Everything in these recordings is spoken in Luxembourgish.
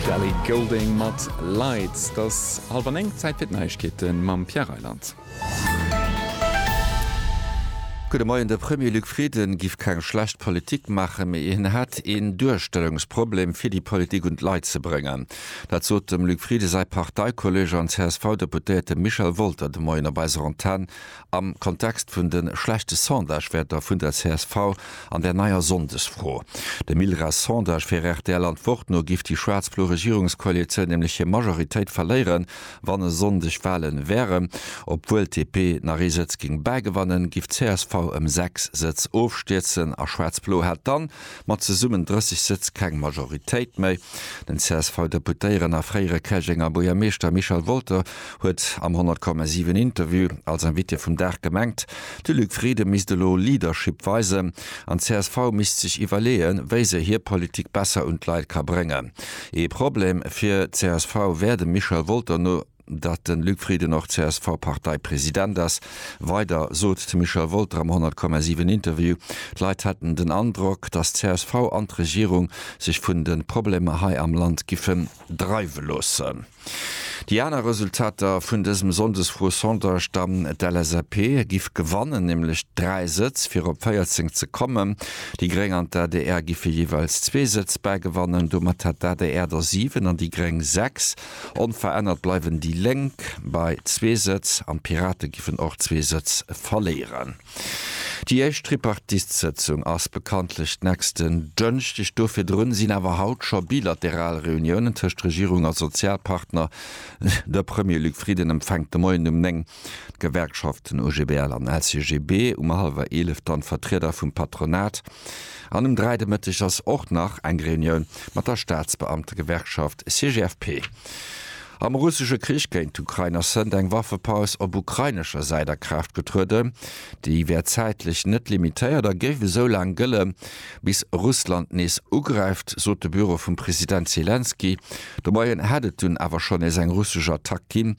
D'Ellie Goulding mat Lights. Et ass hallwer néng, Zäit fir d'Neiegkeete mam Pierre Reyland. Gudde Moien. De Premier Luc Frieden giff keng schlecht Politik maachen, mee hien hätt een Duerstellungsproblem fir déi Politik un d'Leit ze bréngen. Dat sot dem Luc Frieden säi Parteikolleeg an CSV-Deputéierte Michel Wolter de Moien op eiser Antenn Am Kontext vun de schlechte Sondagewäerter vun der csv an der neier Sonndesfro. Dem ILRAS Sondage fir rtl an d'Wort no giff déi schwaarz-blo Regierungskoalitioun nämlech hir Majoritéit verléieren, wann e Sonndeg Walen wären. Obwuel d'DP nach ee Sëtz géing bäigewannen, giff d'csv ëm 6 Sëtz ofstierzen a schwaarz-blo hätt dann Mat zesummen 30 Sëtz keng Majoritéit méi. Den CSV-Deputéieren a fréiere Käerjenger Buergermeeschter Michel Wolter huet am 100,7 Interview als Invité vum Dag gemengt, de Luc Frieden misst elo Leadership weisen an d'CSV misst sech iwwerleeën, wéi se hir Politik besser un d'Leit ka bréngen. Ee Problem fir d'CSV wär dem Michel Wolter no. datt de Luc Frieden och CSV-Parteipresident ass. Weider sot de Michel Wolter am 100,7 Interview, d'Leit hätten den Androck, datt csv an d'Regierung sech vun de Problemer hei am Land giffe dreiwe loossen. Déi aner Resultater vun dësem Sonndesfro-Sondage dann, D'LSAP giff gewannen, nämlech 3 Sëtz, fir op 14 ze kommen. Déi Gréng an d'ADR giffe jeeweils zwee Sëtz bäigewannen. Domat hätt d'ADR der 7 an déi Gréng 6. Onverännert bleiwen déi Lénk bei zwee Sëtz an d'Pirate giffen och zwee Sëtz verléieren. Déi éischt Tripartitesëtzung ass bekanntlech nächsten Dënschdeg. Do virdrun sinn awer haut scho bilateral Reuniounen tëscht Regierung a Sozialpartner. De Premier Luc Frieden empfänkt de Moien um 9 d'Gewerkschaften OGBL an LCGB, um hallwer 11 dann d'Vertrieder vum Patronat. An um 3 de Mëtteg ass och nach eng Reunioun mat der Staatsbeamtegewerkschaft CGFP. Am russesche Krich géint d'Ukrain ass hënt eng Waffepaus op ukrainescher Säit a Kraaft getrueden. Déi wär zäitlech net limitéiert a géif esou laang gëlle bis Russland nees ugräift, sot de Büro vum President Selenskyj. De Moien hätt et dunn awer schonn nees eng russesch Attack ginn,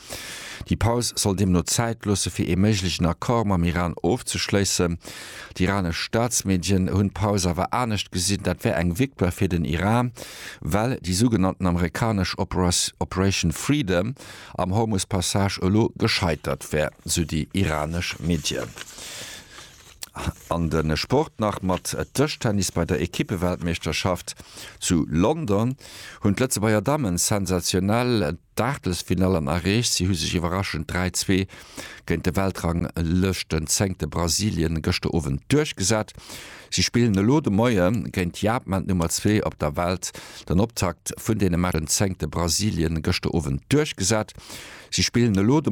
Déi Paus soll deemno Zäit loosse fir ee méiglechen Accord mam Iran ofzeschléissen. D'iranesch Staatsmedien hunn d'Paus awer anescht gesinn, dat wär eng Victoire fir den Iran, well déi sougenannten amerikanesch Operation Freedom am Hormus-Passage elo gescheitert wär, sou déi iranesch Medien. An de Sport nach mat Dëschtennis, Bei der Ekippeweltmeeschterschaft zu London hunn d'Lëtzebuerger Dammen sensationell. D'Aachtelsfinall an Areech. Si hu sech iwwerraschend 3, 2 géint de Weltranglëschtenzéngte Brasilien gëschter Owend duerchgesat. Si spillen elo de Moie géint Japan, d'Nummer zwee op der Welt. Den Optakt vun deene Matchen zéngte Brasilien gëschter Owend duerchgesat. Si spillen elo de.